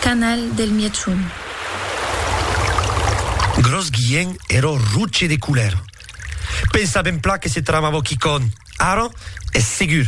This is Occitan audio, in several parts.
Canal del Mièchon. Gròs guien ero roche de colèr. Pensa ben pla que se tramavo quicònh, ara es segur.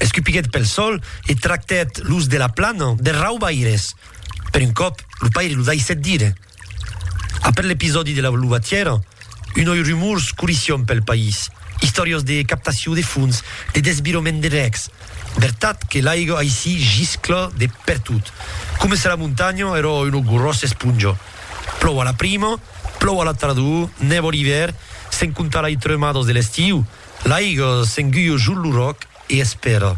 Escupiguèt pel sol e tractèt los de la plana de raubaires. Per un còp, lo paire lo daissèt dire. Après l'episòdi de la luvatièra, unoi rumors corission pel país, istòrias de captacion de fons, de desvirament de rècs. Vertat que l'aiga aicí giscla de pertot, coma se la montanha èra una gròssa esponja. Plòu a la prima, plòu a la tardor, nèva l'ivèr, sens comptar lai tremadas de l'estiu, l'aiga s'enguia jos lo ròc, e espèra,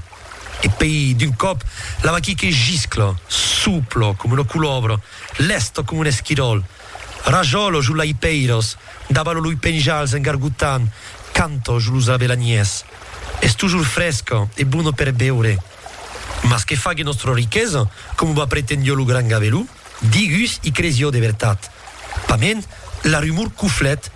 e pei d'un còp la vaquí que giscla, supla coma una colòbra, lèsta coma un esquiròl, rajòla jo lai pèiras, dabalo loi penjals en gargotant, canta jo los avelanièrs. Es tojor fresca e bona per beure. Mas que fague nòstra riquesa, coma va pretendió lo gran gaveló? Digus i cresion de vertat. Pament, la rumor coflèt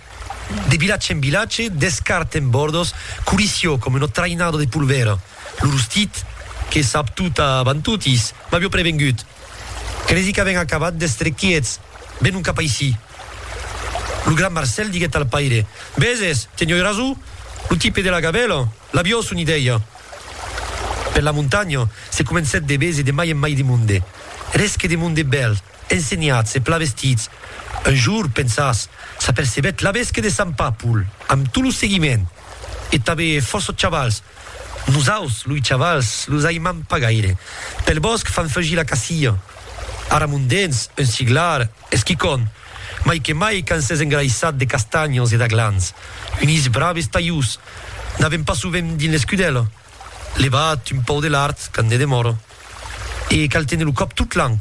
de vilatge en vilatge, d'escart en bòrdos, corission coma una traïnada de polvèra. Lo rostit, que sap tot avant totis, m'avió prevengut. Cresi qu'avèn acabat d'èstre quiets, venon cap aicí. Lo gran Marcèl diguèt al paire, Veses, tenioi rason, lo tipe de la gavèla. L'avió s'unideia per la montanha, se comencèt de bés e de mai en mai de monde. Eres que de monde bèl, ensenhats e pla vestits. Un jour, pensas, s'apercebèt l'avès que de Sant Papul, amb tot lo seguiment, e tanbe fòrça chavals. Nosaus, loi chavals, los aimam pas gaire. Pel bòsc fan fugir la cacia. Ara mon dens un siglar Es quicòm, mai que mai quand s'es engraissat de castanhos e d'aglans, unís braves talhús, n'avèm pas sovent dins l'escudèla, levat un pauc de lard quand ne demòra. E cal téner lo còp tot l'an,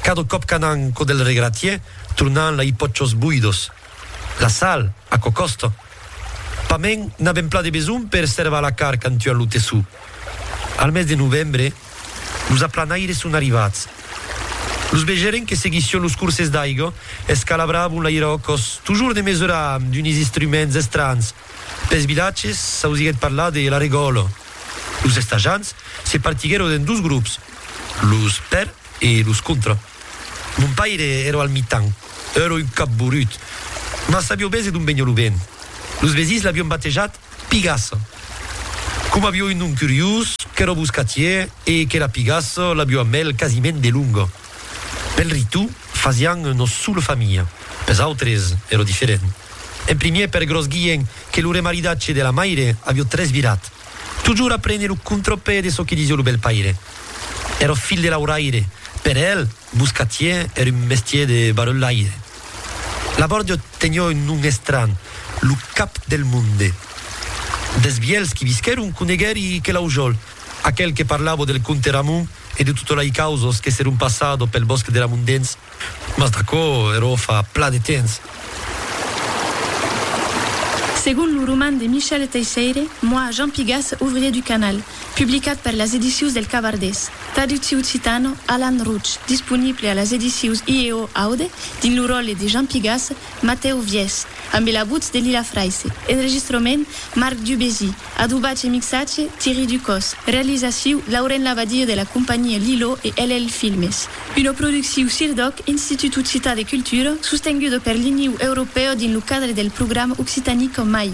cada còp qu'anam cò del regratier, tornam la i pòchos boidos. La sal, aquò còsta. Pas mens n'avèm plan de besonh per servar la carn quand tuam lo tessó. Al mes de novembre, Los aplanaires son arrivats. Los vegèren que seguission los corses d'aiga, escalabravon l'aire au còs, tojors de mesurar amb d'unis instruments estranhs. Pels vilatges, s'ausiguèt parlar de la regòla. Los estajants se partiguèron en dos grops, los per e los contra. Mon paire èra al mitan. Èra un cap borut. Mas sabió bèse d'on veniá lo vent. Los vesins l'avián batejat Pigasse. Coma avió un nom curiós, qu'èra boscatier e que la pigasse l'avió amb el quasiment de longa. Pel ritu, fasián nos sola familha, pels autres èra diferent. En primièr per gròs guien que lo remaridatge de la maire avió tresvirat. Totjorn aprene lo contrapè de çò que disió lo bèlpaire. Èra filh de lauraire, per el, Buscatier èr un mestier de barrelaire. Labòrdio tenió un nom estranh, lo cap del monde. Des vielhs qui visquèron coneguèri que Laujòl, aquel que parlavo del comte Ramon e de tota lei causos que seron passado pel bòsc de Ramondens, mas d'aquò eró fa pla de temps. Segon lo roman de Michel Teisseire, moi, Jean Pigas, ouvrier du canal, Publicat per las Edicius del Cavardés, traductiu occitano Alan Roch, disponible a las Edicius IEO Aude dins lo ròtle de Jean Pigasse, Matèu Viès, ambe la votz de Lila Fraisse, enregistrament Marc Dubésy, adobatge e mixatge Thierry Ducos, realizaciu Lauren Labadie de la companhia Lilo e LL Filmes. Una producciu CIRDOC, Institut Occitan de Cultura, sostenguda per l'Iniu Europèu dins lo cadre del programa Occitanie qu'en mai.